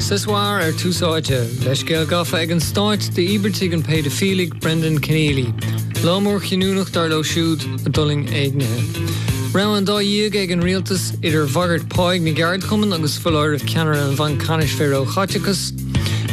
Sa soir ar Tús Áite, leithscéal gafa ag an stáit d'íobartaigh an péidifiligh Brendan Kenneally, lá mór chinniúnach dar leo siúd a d'fhulaing éignithe. Rogha an dá dhíogha ag an rialtas, idir bhagairt pháigh na gceardchumann agus foláireamh ceannaire an Bhainc Ceannais faoi róchaiteachas.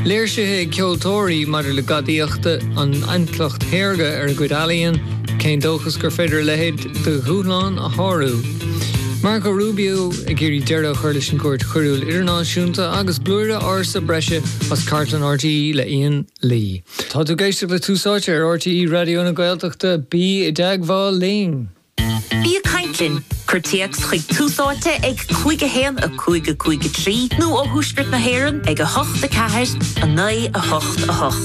Léirsithe ag ceoltóirí maidir le gadaíocht an intleacht shaorga ar a gcuid ealaíon, cén dóchas gur féidir a leithéid de dhúshlán a shárú. Marco Rubio ag iarraidh deireadh a chur leis an gCúirt Choiriúil Idirnáisiúnta agus blúire ársa breise as cartlann RTÉ le Ian Lee. Tá tú ag éisteacht le Tús Áite ar RTÉ Raidió na Gaeltachta. Bí i dteagmháil linn! Bí ag caint linn! Cuir téacs chuig Tús Áite ag 51553 nó ó thuaisceart na hÉireann ag 8 4 9 8 8.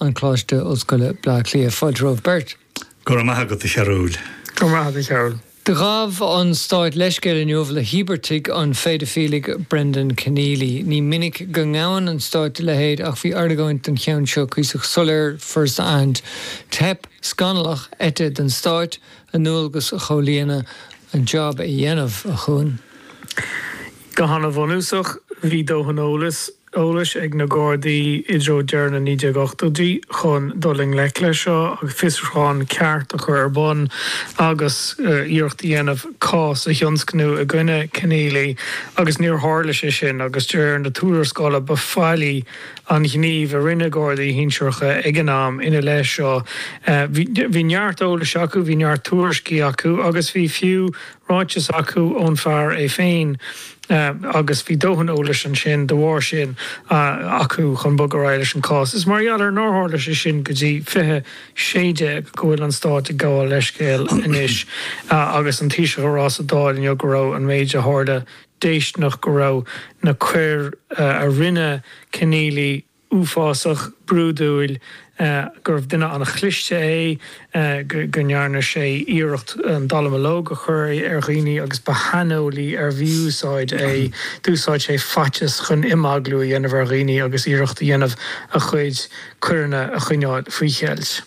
an Choláiste Ollscoile, Bleá Cliath. Fáilte romhaibh beirt. Go raibh maith agat, a Chearbhaill. Go raibh maith agat, a Chearbhaill. Do ghabh an Stáit leithscéal inniu le híobartaigh an phéidifiligh Brendan Kenneally. Ní minic go ngabhann an Stáit a leithéid ach bhí argóint den cheann seo cuíosach soiléir first hand. Teip scannalach, eite den Stáit a ndualgas a chomhlíonadh, a job a dhéanamh, a Chúáin. Go han-bhunúsach, bhí dóthain eolais. eolais ag na Gardaí i dtreo deireadh na 1980idí chun dul i ngleic leis seo agus fiosrúchán ceart a chur ar bun agus iarracht a dhéanamh cás a thionscnamh i gcoinne Kenneally agus níor tharla sé sin agus de réir na tuarascála ba faillí an gníomh a rinne Gardaí shinsearacha ag an am ina leith seo. Bhí neart eolais acu, bhí neart tuairiscí acu agus bhí fiú ráiteas acu ón bhfear é féin agus bhí dóthain eolais ansin, de bharr sin, acu chun bogadh ar aghaidh leis an chás. Is mar gheall ar nár tharla sé sin go dtí 2016 go bhfuil an Stát ag gabháil leithscéil anois agus an Taoiseach ag rá sa Dáil inniu go raibh an méid a tharla déistineach, go raibh na coir a rinne Kenneally uafásach, brúidiúil, gurbh duine an-chliste é, go ndearna sé iarracht an dallamullóg a chur ar dhaoine agus ba shaineolaí ar mhí-úsáid é, d'úsáid sé faitíos chun imeaglú a dhéanamh ar dhaoine agus iarracht a dhéanamh a chuid coireanna a choinneáil faoi cheilt.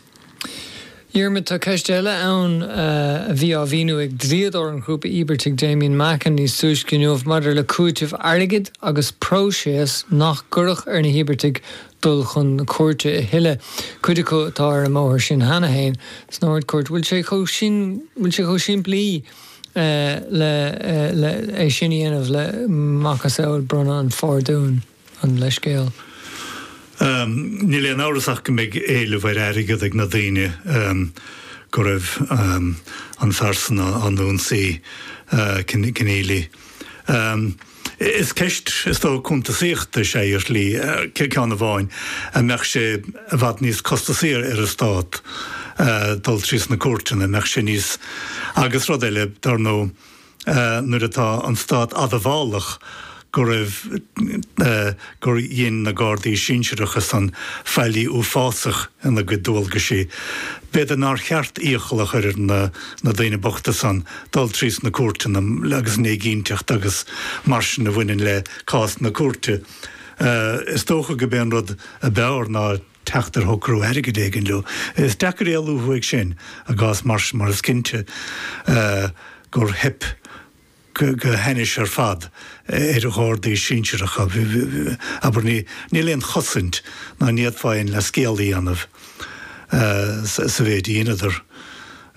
Dhiarmaid, Tá ceist eile ann a bhí á mhíniú ag dlíodóir an ghrúpa íobartaigh, Damian Mackin, níos túisce inniu maidir le cúiteamh airgid agus próiseas nach gcuirfeadh ar na híobartaigh dul chun na cúirte a thuilleadh. Cuid acu atá ar an mbóthar sin cheana féin san Ard-Chúirt. Bhfuil sé chomh sin, bhfuil sé chomh simplí le, le, le é sin a dhéanamh, le macasamhail bronnadh an phardúin? an leithscéal. Níl aon amhras ach go mbeidh éileamh ar airgead ag na daoine go raibh an fear san á n-ionsaí, Kenneally. Is ceist, is dócha, cuntasaíochta is ea í ar shlí, ceann amháin, an mbeadh sé i bhfad níos costasaí ar an Stát dul trí sna cúirteanna, an mbeadh sé níos, agus rud eile, dar ndóigh, nuair atá an stát admhálach go raibh gur dhein na Gardaí sinsearacha san faillí uafásach ina gcuid dualgaisí, b'fhéidir nár cheart iachall a chur ar na na daoine bochta san dul trí sna cúirteanna agus an éiginnteacht agus mar sin a bhaineann le cás na cúirte. Is dócha go b'é an rud a b'fhearr ná. teacht ar shocrú airgid éigin leo. Is deacair éalú uaidh sin i gcás Marsh mar is cinnte gur theip go hainnis ar fad ar Ghardaí sinsearacha, abair. Níl aon chosaint ná ní fhéadfá aon leithscéal a dhéanamh sa mhéid a dheineadar.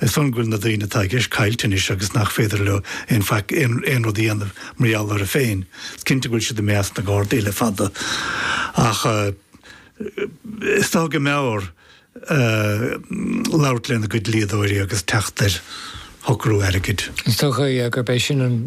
Is eol dom go bhfuil na daoine atá i gceist caillte anois agus nach féidir leo aon faic, aon rud a dhéanamh mar gheall air féin. Is cinnte nach bhfuil siad i measc na nGardaí le fada ach, is dócha go mb'fhearr labhairt lena gcuid dlíodóirí agus teacht ar shocrú airgid. Is dócha gurb é sin an.